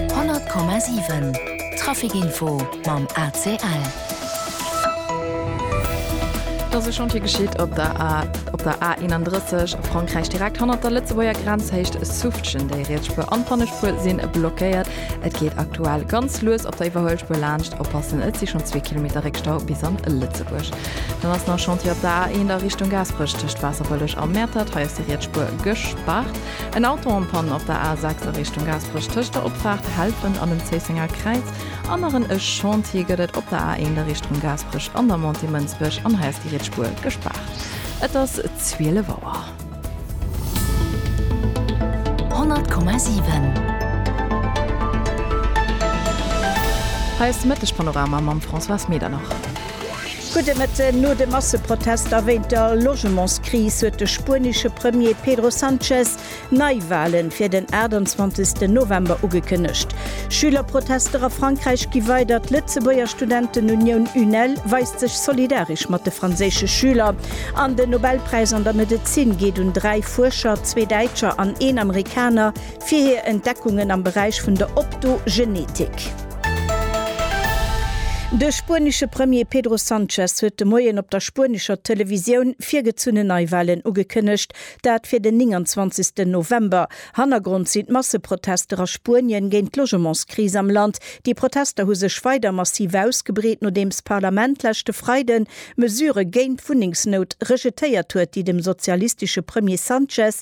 100,7 Trafic Info mam ACL. Et ass e Chantier geschitt op der A 31 a Frankräich, direkt hannert der Lëtzebuerger Grenzhéicht Suffgen. Déi riets Spuer an d'Pannespuer si blockéiert. Et geet aktuell ganz lues op der Iwwerhuelspuer laanscht. Oppassen, et si schonn zwee Kilometer Réckstau bis an Lëtzebuerg. Dann ass nach Chantier op der A1 a Richtung Gaasperech tëscht Waasserbëlleg a Mäertert. Hei ass déi riets Spuer gespaart. En Auto en panne op der A6 a Richtung Gaasperech tëscht der Opfaart Helpen an dem Zéissenger Kräiz an nach en e Chantier gëtt et op der A1 a Richtung Gaasperech an der Montée Mënsbech an hei ass déi riets Spuer gespaart. Et ass 12 Auer. 100,7. Hei ass de Mëtteg Panorama mam Françoise Medernach. Gudde Mëtten. No de Masseprotester wéint der Logementskris huet de spuenesche Premier Pedro Sanchez Neiwahle fir den 28 November ugekënnegt. Schülerprotester a Frankräich gi weider, d'Lëtzebuerger Studentenunioun UNEL weist sech solidaresch mat de franséische Schüler an den Nobelpräis an der Medezin geet un dräi Fuerscher, zwee Däitscher an een Amerikaner, Fir hir Entdeckungen am Beräich vun der Optogenetik. De spuenesche Premier Pedro Sanchez huet de Moien op der spuenescher Televisioun virgezunnen Neiwalen ugekënnegt, dat fir den 29 November. Hannergrond sinn d'Masseprotester a Spuenien géint d'Logementskris am Land. Déi Protester hu sech weider massiv ausgebreet, nodeems d'Parlament leschte Freiden Mesurë géint d'Wunnengsnout rejetéiert huet, déi dem sozialistesche Premier Sanchez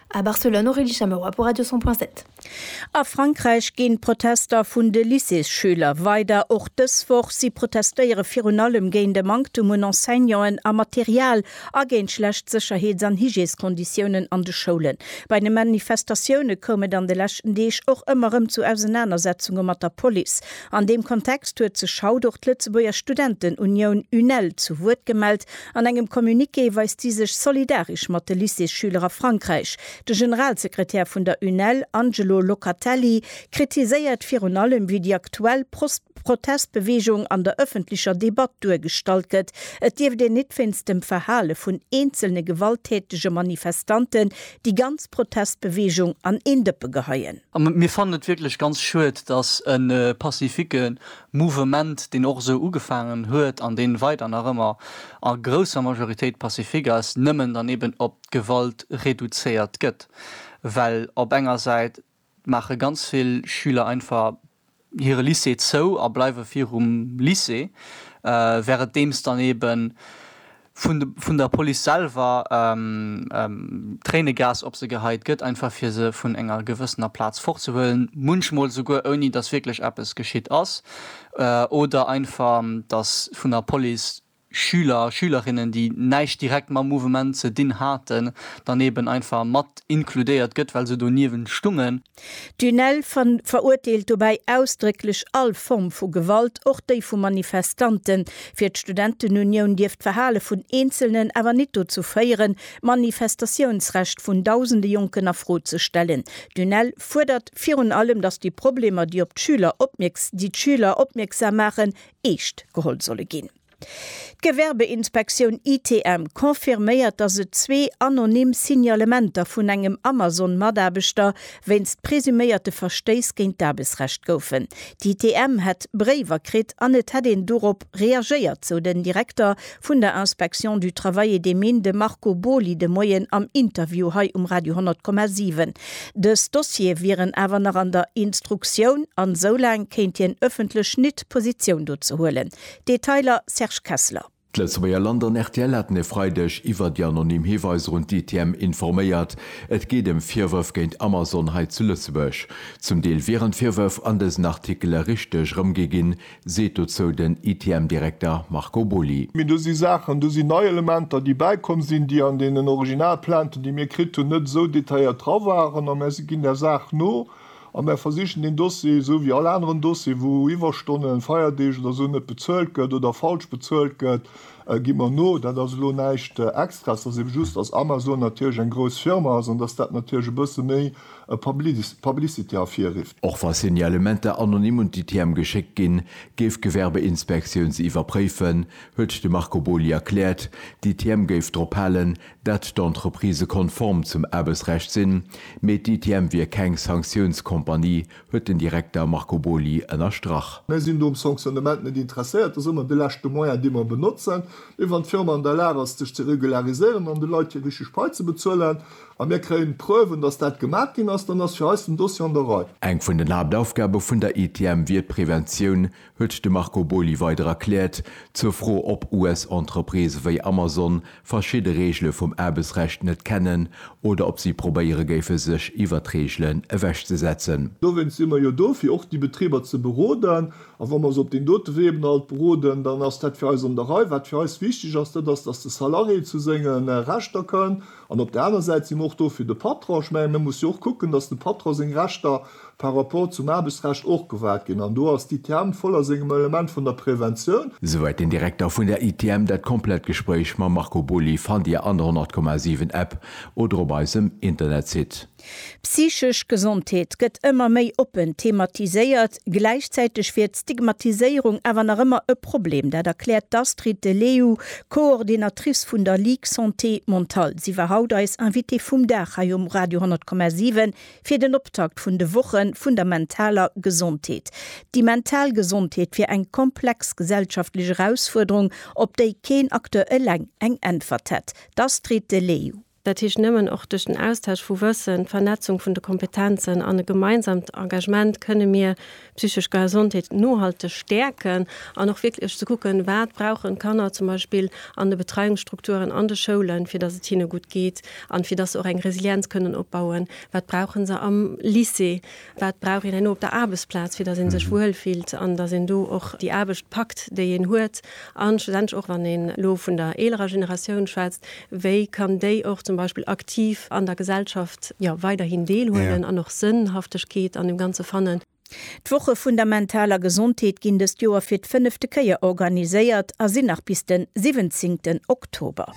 A Barcelone, Aurélie Chamerois pour Radio 100 point 7. A Frankräich ginn d'Protester vun de Lycéesschüler weider. Och dës Woch si protestéiere virun allem géint e Manktum un Enseignanten a Material a géint schlecht Sécherheets an Hygièskonditiounen an de Schoulen. Bei de Manifestatioune koum et an de leschten Deeg och ëmmer rëm zu Ausenanersetzunge mat der Police. An deem Kontext huet sech haut och d'Lëtzebuerger Studentenunioun UNEL zu Wuert gemellt An engem Communiqué weist si sech solidarisch mat de Lycéesschüler a Frankräich. De Generalsekretär vun der UNEL, Angelo Locatelli, kritiséiert virun allem, wéi déi aktuell Protestbeweegung an der ëffentlecher Debatt duergestallt gëtt. Et dierft een nit wéinst dem Verhale vun eenzelne gewalttätege Manifestanten déi ganz Protestbeweegung an een Dëppe geheien. Mir fannen et wierklech ganz schued, datt e pacifique Mouvement, deen och esou ugefaangen huet an deen weider nach ëmmer a grousser Majoritéit pacifique ass, nëmmen dann eben op d'Gewalt reduzéiert gëtt. Well op enger Säit maache ganz vill Schüler einfach hire Lycée zou a bleiwe virum Lycée, währenddemst dann eben, vun der Police selwer Tréinegas op se geheit gëtt, einfach fir se vun enger gewëssener Plaz fortzehuelen, munchmol souguer ouni dass wierklech eppes geschitt ass, oder einfach dass vun der Police Schüler, Schülerinnen, déi näischt direkt mam Mouvement ze dinn haten, dann eben einfach mat inkludéiert gëtt, well se doniewent stungen. D'UNEL verurteelt dobäi ausdrécklech all Form vu Gewalt, och déi vu Manifestanten. Fir d'Studentenunioun dierft d'Verhale vun Eenzelnen awer nit dozou féieren, d'Manifestatiounsrecht vun dausende Jonken a Fro ze stellen. D'UNEL fuerdert virun allem, datt déi Problemer, déi d'Schüler opmierksam maachen, eescht geholl solle ginn. D'Gewerbeinspektioun ITM confirméiert, datt et zwee anonym Signalementer vun engem Amazon-Mataarbechter wéinst presuméierte Verstéiss géint d'Aarbechtsrecht goufen. D'ITM hätt Bréiwer kritt an et hätt een dorop reagéiert, sou den Direkter vun der Inspection du Travail et des Mines, de Marco Boly de Moien am Interview hei um Radio 10,7. Dës Dossiere wieren awer nach an der Instruktioun an soulaang kéint hien ëffentlech nit Positioun dozu huelen. Detailer, Serge Kessler. D'Lëtzebuerger Land an rtl haten e Freideg iwwer déi anonym Hiweiser un d'ITM informéiert. Et geet ëm Virwërf géint Amazon hei zu Lëtzebuerg. Zum Deel wieren d'Virwërf an dësen Artikele richteg erëmgi ginn, seet dozou den ITM-Direkter Marco Boly. Mee do si Saachen, do sinn nei Elementer, déi bäikomm sinn, déi an deenen Originalplainten, déi mir kritt hunn, net esou detailléiert dra waren. A mir ginn där Saach no. A mär versichen deen Dossier, esou wéi all aneren Dossier, wou Iwwerstonnen, Feierdeeg oder esou net bezuelt gëtt oder falsch bezuelt gëtt, gi mer no. Dat ass elo näischt Extraes. Et ass ebe just, dass Amazon natierlech eng grouss Firma ass an dass dat natierlech e bësse méi Publicité ervirrifft. Och wa Signalementer anonym un d'ITM geschéckt ginn, géif d'Gewerbeinspektioun se iwwerpréifen, huet de Marco Boly erkläert. D'ITM géif drop halen, datt d'Entreprise konform zum Aarbechtsrecht sinn, mee d'ITM wier keng Sanktiounscompagnie, huet den Direkter Marco Boly ënnerstrach. Mir sinn do um Sanctionnement net interesséiert. Dat ass ëmmer de leschte Moyen, dee mer benotzen. Mee wann d'Firma an der Lag ass, sech ze regulariséieren an de Leit hir richteg Pai ze bezuelen a mir kréien Preuven, datt dat gemaach ginn ass, dann ass fir eis den Dossier an der Rei. Eng vun den Haaptaufgabe vun der ITM wier d'Preventioun huet de Marco Boly weider erkläert. Zur Fro, ob US-Entreprisë wéi Amazon verschidde Reegele vum Aarbechtsrecht net kennen oder ob si probéiere géife sech iwwert d'Reegelen ewechzesetzen. Dowéinst si mer jo do, fir och déi Betriber ze beroden. A wa mer se op deem dote Wee eben alt beroden, dann ass dat fir eis an der Rei. Wat fir eis wichteg ass, dat ass, datt de Salarié zu senge Rechter kënnt. An op der aner Säit si mer och do fir de Patron. Ech mengen, e muss jo och kucken, datt dem Patron seng Rechter par rapport zum Aarbechtsrecht och gewahrt ginn. An do ass d'ITM voll a sengem Element vun der Preventioun. Souwäit den Direkter vun der ITM. Dat komplett Gespréich mam Marco Boly fannt Dir an der 100,7 App oder op eisem Internetsite. Psychesch Gesondheet gëtt ëmmer méi oppen thematiséiert, gläichzäiteg wier d'Stigmatiséierung awer nach ëmmer e Problem. Dat erkläert d'Astrid de Leeuw, Coordinatrice vun der Ligue Santé Mentale. Si war haut eis Invitée vum Dag hei um Radio 10,7 fir den Optakt vun de Woche vun der mentaler Gesondheet. Déi mental Gesondheet wier eng komplex gesellschaftlech Erausfuerderung, op déi keen Acteur eleng eng Äntwert hätt. D'Astrid de Leeuw. Dat heescht nëmmen och duerch den Austausch vu Wëssen, d'Vernetzung vun de Kompetenzen an e gemeinsamt Engagement kënne mir psychesch Gesondheet nohalteg stäerken an och wierklech ze kucken, wat brauchen d'Kanner zum Beispill an de Betreiungsstrukturen an de Schoulen, fir dass et hinne gutt geet an fir dass se och eng Resilienz kënnen opbauen, wat brauchen se am Lycée. Wat brauch een herno op der Aarbechtsplaz, fir datt ee sech wuel fillt an datt een do och déi Aarbecht packt, déi een huet? A schlussendlech och, wann een elo vun der eelerer Generatioun schwätzt, wéi kann déi och zum Beispill aktiv an der Gesellschaft, jo, weiderhin Deel huelen an och Sënnhaftegkeet an dem Ganze fannen? D'Woche vun der mentaler Gesondheet ginn dëst Joer fir d'fënnefte Kéier organiséiert a sinn nach bis den siwwenzéngten Oktober.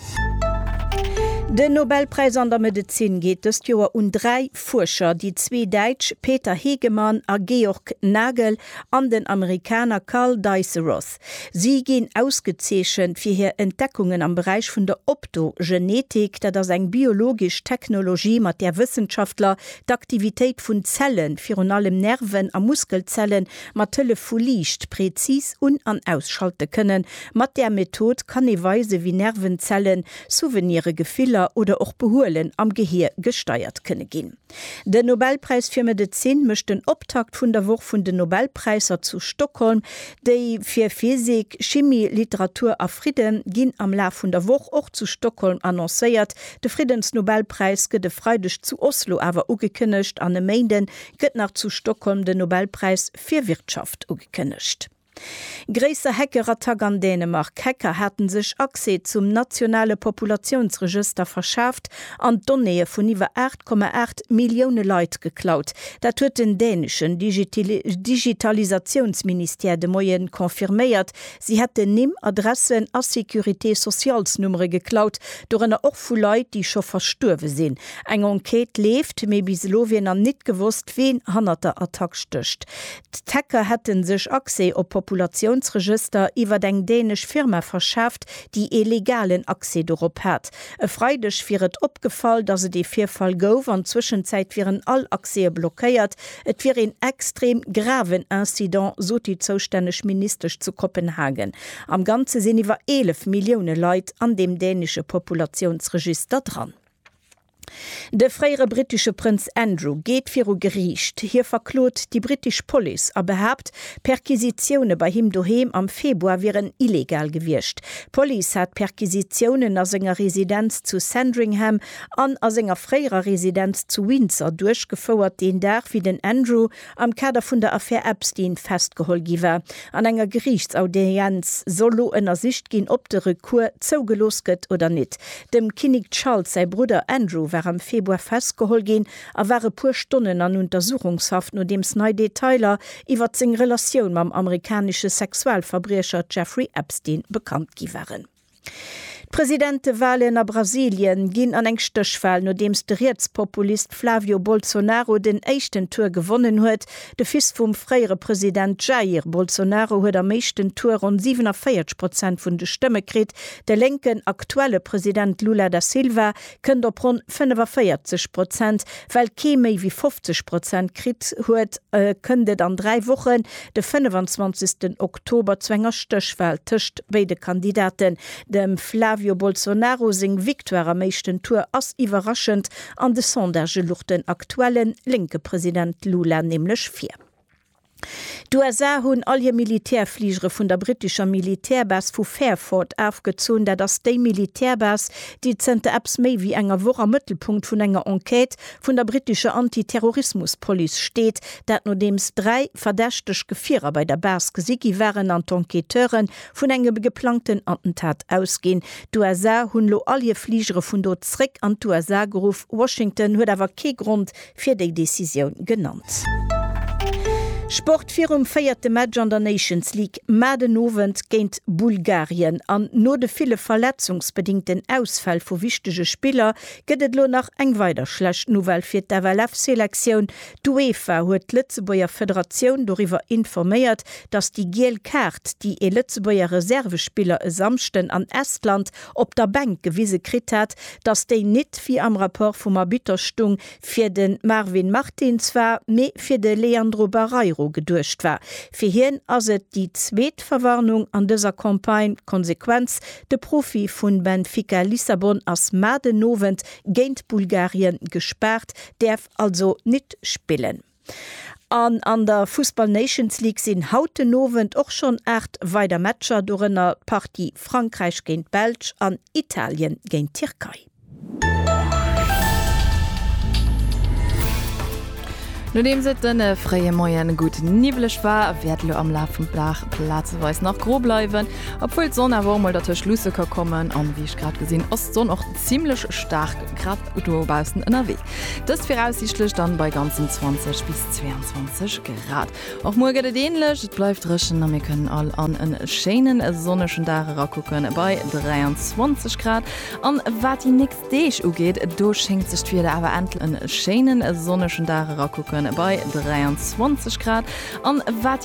Den Nobelpräis an der Medezin geet dëst Joer un dräi D'Fuerscher, déi zwee Däitsch Peter Hegemann a Georg Nagel an den Amerikaner Carl Diceros, si ginn ausgezeechent fir hir Entdeckungen am Beräich vun der Optogenetik, dat ass eng biologesch Technologie, mat där Wëssenschaftler d'Aktivitéit vun Zellen, virun allem Nerven a Muskelzellen, mat Hëllef vu Liicht präzis un an ausschalte kënnen. Mat där Method kann ee weisen, wéi Nervenzellen Souvenire, Gefiller oder och Behuelen am Gehier gesteiert kënne ginn. Den Nobelpräis fir Medezin mécht den Optakt vun der Woch vun den Nobelpräisser zu Stockholm. Déi fir Physik, Chimie, Literatur a Fridde ginn am Laf vun der Woch och zu Stockholm annoncéiert. De Friddensnobelpräis gëtt e Freideg zu Oslo awer ugekënnegt an e Méinde gëtt nach zu Stockholm den Nobelpräis fir Wirtschaft ugekënnegt. Gréisser Hackerattack an Dänemark, Hacker hate sech Accès zum nationale Populatiounsregëster verschaaft an d'Donnéeë vun iwwer 8,8 Millioune Leit geklaut. Dat huet den däneschen Digitalisatiounsministère de Moie confirméiert. Si hätten Nimm, Adressen a Sécurité-socialsnummere geklaut, dorënner och vu Leit, déi scho verstuerwe sinn. Eng Enquête leeft, mee bis elo wier nach nit gewosst, ween hannert der Attack stécht. D'Hacker hätte sech Accès op Populatiounsregëster iwwer eng dänesch Firma verschaaft, déi ee legalen Accès dorop hat. E Freideg wier et opgefall, datt et ee Virfall gouf an Zwëschenzäit wieren all Accèse blockéiert. Et wier een extrem graven Incident, sot déi zoustänneg Ministesch zu Kopenhagen. Am Ganze sinn iwwer 11 Millioune Leit an deem dänesche Populatiounsregister dran. De fréiere brittesche Prënz Andrew geet viru Geriicht. Hie verklot déi brittesch Police a behaapt, Perquisitioune bei him doheem am Februar wieren illegal gewiescht. D'Police hat Perquisitiounen a senger Residenz zu Sandringham an a senger fréierer Residenz zu Windsor duerchgefouert, deen Dag wéi den Andrew am Kader vun der Affär Epstein festgeholl gi war. An enger Geriichtsaudienz soll lo ënnersicht ginn, ob de Recours zougelooss gëtt oder nit. Dem Kinnik Charles säi Brudder Andrew war am Februar festgeholl ginn a war e puer Stonnen an Untersuchungshaft, nodeems nei Detailer iwwert seng Relatioun mam amerikanesche Sexualverbriecher Jeffrey Epstein bekannt gi waren. D'Presidentewalen a Brasilien ginn an eng Stéchwal, nodeems de Rietspopulist Flavio Bolsonaro den éischten Tour gewonnen huet. De Fils vum fréiere President Jair Bolsonaro huet am éischten Tour ronn 47 Prozent vun de Stëmme kritt. De lénken aktuelle President Lula da Silva kënnt op ronn 45 Prozent. Well kee méi wéi 50 Prozent kritt huet, kënnt et an dräi Wochen, de 25 Oktober, zu enger Stéchwal tëscht béide Kandidaten. Dem Flavio Bolsonaro seng Victoire am éischten Tour ass iwwerraschend, an de Sondagë lucht den aktuelle lénke President Lula nämlech vir. D'USA hunn all hir Militärfligere vun der brittescher Militärbase vu Fairford afgezunn. Dat ass déi Militärbase, déi zënter eppes méi wéi enger Woch am Mëttelpunkt vun enger Enquête vun der brittescher Anti-Terrorismus-Police steet. Dat nodeems dräi verdächteg Gefierer bei der Base gesi gi waren an d'Enquêteure vun engem geplangten Attentat ausginn. D'USA hunn elo all hir Fligere vun do zréck an d'USA geruff. Washington huet awer kee Grond fir déi Decisioun genannt. Sport, Virum véierte Match an der Nations League mar den Owend géint Bulgarien an no de ville verletzungsbedingten Ausfäll vu wichtege Spiller gëtt et elo nach eng weider schlecht Nouvelle fir d'FLF-Selektioun. D'UEFA huet d'Lëtzebuerger Federatioun doriwwer informéiert, datt déi giel Kaart, déi ee Lëtzebuerger Reservespiller e Samschden an Estland op der Bänk gewise kritt hat, datt déi nit, wéi am Rapport vum Arbitter stung, fir de Marvin Martins war, mee fir de Leandro Barreiro geduecht war. Fir hien ass et déi zweet Verwarnung an dëser Campagne. D'Konsequenz, de Profi vu Benfica Lissabon ass mar den Owend géint Bulgarien gespaart, däerf also nit spillen. An an der Fussball Nations League sinn haut den Owend och schonn 8 weider Matcher, dorënner d'Partie Frankräich géint d'Belsch an Italien géint d'Tierkei. Nodeems et de fréie Moie gutt niwweleg war, wäert elo am Laf vum Dag plazeweis nach gro bleiwen, obwuel d'Sonn awer och mol dertëscht luusse ka kommen. An wéi ech grad gesinn, ass d'Sonn och zimlech staark grad. do baussen ënnerwee. Dëst viraussiichtlech dann bei ganzen 20 bis 22 Grad. Och muer gëtt et änlech, et bleift dréchen a mir kënnen all an e schéinen sonnegen Dag erakucken bei 23 Grad. An wat déi nächst Deeg ugeet, do schéngt sech d'Wieder awer endl. E schéinen sonnegen Dag erakucken bei 23 Grad. An wat déi.